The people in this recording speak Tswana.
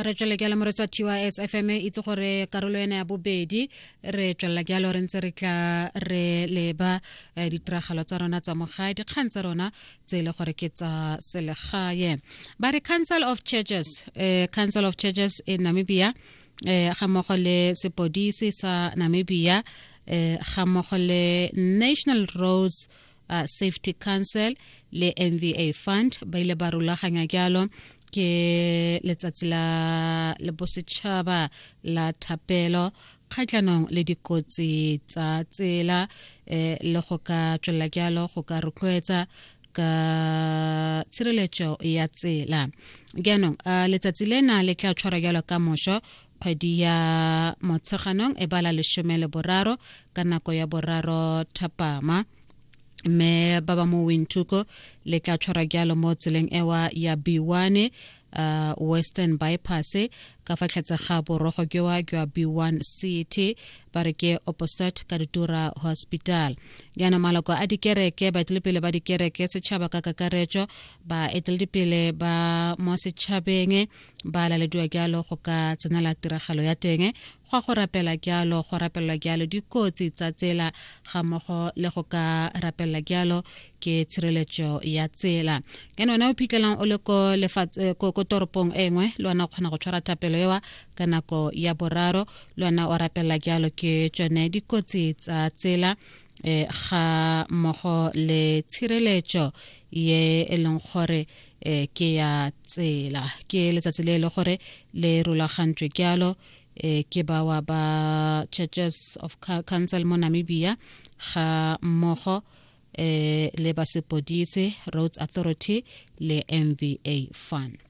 re tswele jalo moretsa tys fm e itse gore karolo ena ya bobedi re tswelela jalo re ntse re tla re leba eh, ditiragalo tsa rona tsa mogae dikgang tsa rona tse e le gore ke tsa selegae ba re council of churches eh, council of churches in namibia eh, ga mmogo le sepodisi sa namibia eh, ga mmogo le national roads uh, safety council le mva fund ba ile ba rulaganya jalo ke letsatsi la bosetšhaba la thapelo kgatlhanong le dikotsi tsa tsela eh, le go ka tswelela jalo go ka rotloetsa ka tshireletso ya tsela jaanong letsatsi lena le tla tshwara jalo ka moso kgwedi ya motsheganong e bala lesome le boraro ka nako ya boraro thapama mme ba ba mo wintuko le tla tshwara jalo mo tseleng ewa ya b1 uh, western bypass ka fa tlhatse ga borogo jwa jwa b1 city ba re ke opposite ka ditura hospital jaana maloko a dikereke baetelepele ba dikereke setšhaba ka kakaretso baeteledipele ba mo setšhabeng ba lalediwa jalo go ka tsenela tiragalo ya teng go a go rapela jalo go rapelelwa jalo dikotsi tsa tsela ga mmogo le go ka rapelela jalo ke tshireletso ya tsela ene wena o phitlhelang o le ko eh, ko toropong e nngwe le wena o kgona go tshwara thapelo ewa ka nako ya boraro le wena o rapelela jalo ke tsone dikotsi tsa tsela um ga mmogo le tshireletso ye e leng gore eh ke ya tsela ke letsatsi le e le gore le rulagantswe ke alo eh ke bawa ba churches of council mo namibia ga mmogo eh le basepodise roads authority le mva fund